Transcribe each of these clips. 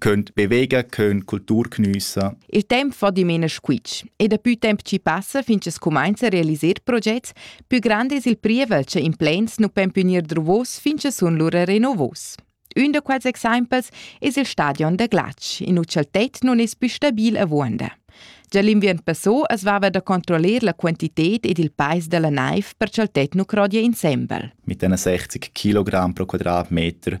könnt bewegen, könnt Kultur geniessen. Il temp fa dimena squitsch e dapi temp ci passa fin che scumainza a realisar progetts, più grande es il prievel che in plans nu pon più gnir druvos fin che sun lura renovos. Un da quels exempels es il stadion da glatsch, in ucel tet nun es più stabil avuonda. Già l'inviern passò es vava da controllar la quantited ed il peis della naiv per cha'l tet nu crodia insembel. Mit den 60 kg pro quadratmeter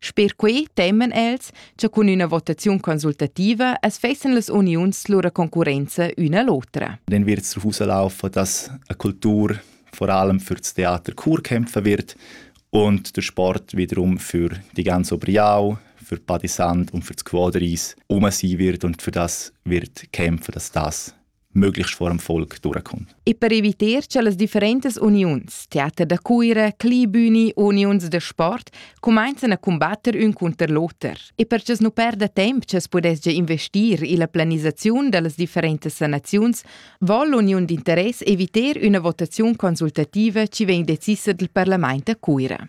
Sper quei teman els, cha cun üna votaziun consultativa as fessan las uniuns lura concurrenza üna l'otra. Dann wird es davonlaufen, dass eine Kultur vor allem für das Theater Chur kämpfen wird und der Sport wiederum für die ganze Obriau, für Padisand und für das Quadris um sein wird und für das wird kämpfen, dass das möglichst vor dem Volk durchkommt. E per evitar che las differentes uniuns, Theater da Cuira, Clibüni, Uniuns de Sport, comencen a combatter ün cunter l'oter e per che nu perda temp che pudesgia investir illa planisaziun da las differentes sanaziuns, vol l'uniun d'interess evitar üna votaziun consultativa chi vegn decisa dal parlament a Cuira.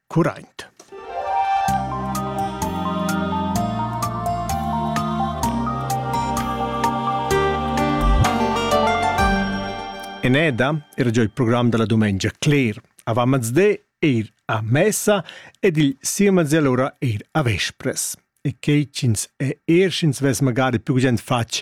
curraint. Eneda era già il program della domenica cler. Avant mezde eir a messa ed il siemez allora eir a vespres. E che ch'ins è er sch'ins vess magari più gend fatg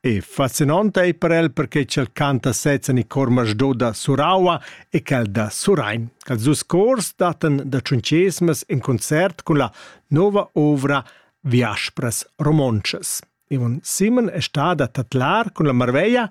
E fascinant ei per el perche ch'el canta sezza ni cor masdò da Suraua e quel da Surain. Ils dus cors dattan da tschunchesmas in concert cun la nova ovra Viaspras romontschas. Ivan Simon è stada tatlar cun la marveglia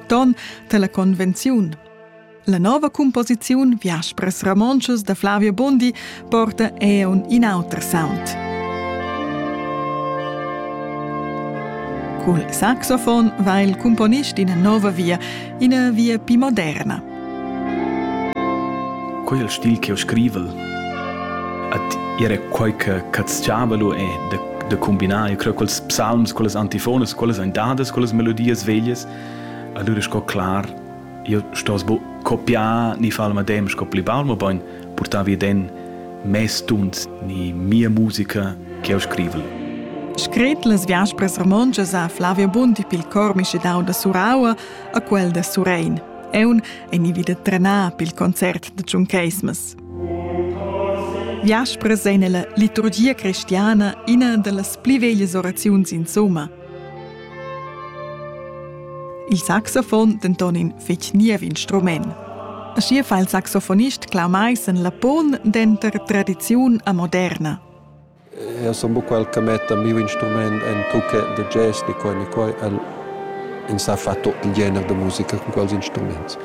ton dalla convenziun. La nova composiziun Viaspres Ramonschus da Flavio Bondi porta eun in auter sound. Cul saxofon va il componist ina nova via, ina via più moderna. Quel stil che ho scrivel at era quai che catschava lu e de, de combinar, io creo quels psalms, quelles antifones, quelles andadas, quelles melodias veglias Allura sco clar, io stoss bu copiar ni far il medem sco pli baul, mobein purtar vi ed en mes tuns ni mia musica che eu scrivel. Scret las viaspras romontschas ha Flavio Bundi pil cor mischedau da Suraua a quel da Surein. Eun ei nivi da trenar pil concert da Tschuncheismas. Viaspras ein ella liturgia cristiana ina dallas pli veglias oraziuns insomma – Il saxofon denton in fetg niev instrument. Schier fa il saxofonist Clau Meissen la pon denter tradiziun a moderna. Eu sun buc quel che metta miu instrument en tucca de jazz, di quai, ni quai. El in sa fa tot il gener de musica con quels instruments.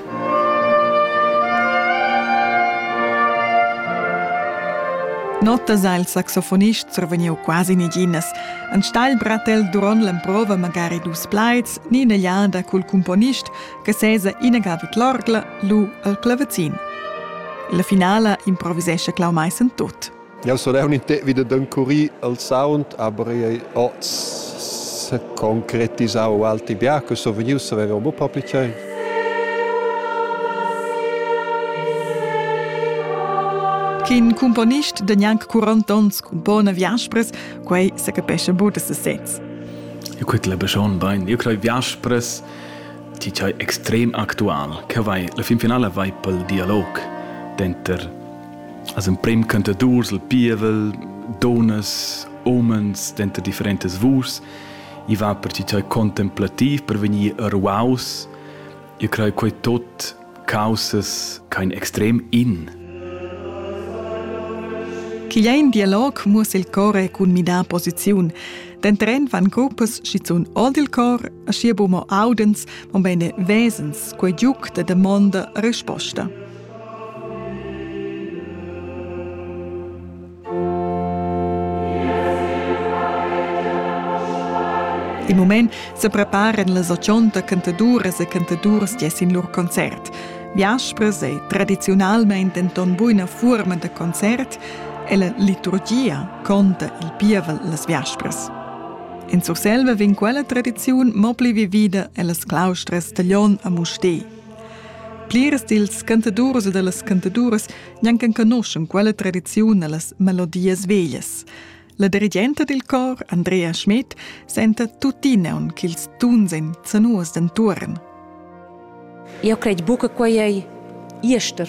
Notas ha il saxofonist survegniu quasi neginas. Enstagl bratel duront l'emprova magari dus plaids ni ina liada cul cumponist che sesa inaga vid l'orgla lu al clavazin. La finala improvisescha Clau Maissen tut. Jau sun eu l'intern vi da d'encurir il sound, aber ich habe auch concretisau altri bia che sun vegnius a vever mo propi tschei. Ch'in cumponist de gnanc 40 ons cun bona viaspres, quei se capescha bu da sesez. Eu quet la beschon bain. Eu crei viaspres ti chai extrem actual, che vai la fin finala vai pel dialog denter As emprem cantadurs il pievel, donas, umens denter differentas vus, i va per ti tei contemplativ per vegnir ruaus, io crei quei tot causas kein extrem in. Chi ein dialog muoss il core cun midar posiziun. Den Tren van gruppas schizun old il cor, a schier bumo audens, mon bene vesens, quei giuc de demonda risposta. Il mument se preparan las ochonta cantaduras e cantaduras gia sin lur concert. Viaspres è tradiziunalmente denton buina fuorma da concert e la liturgia conta il pievel las viaspres. In Surselva vin quella tradiziun mo pli vivida ellas claustras Taglion a Mustè. Plirs dils cantadurs e dallas cantaduras gnanc enconuschan quella tradiziun ellas melodias veglias. La dirigenta dil cor, Andrea Schmidt, senta tuttina aunc ch'ils tuns ein zanuos d'entuorn. Eu cred buca quei ei jester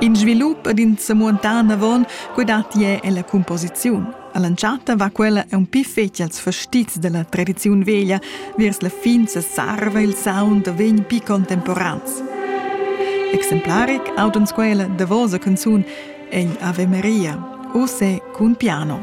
In svilup ad in semuontan avon quei dat jeu ella cumposiziun. All'entschatta va quella un pi fetg als fastizs della tradiziun veglia, viers la fin sesarva il sound da vegn pi contemporans. Exemplaric aut uns quella davosa canzun Egl Ave Maria, o se cun piano.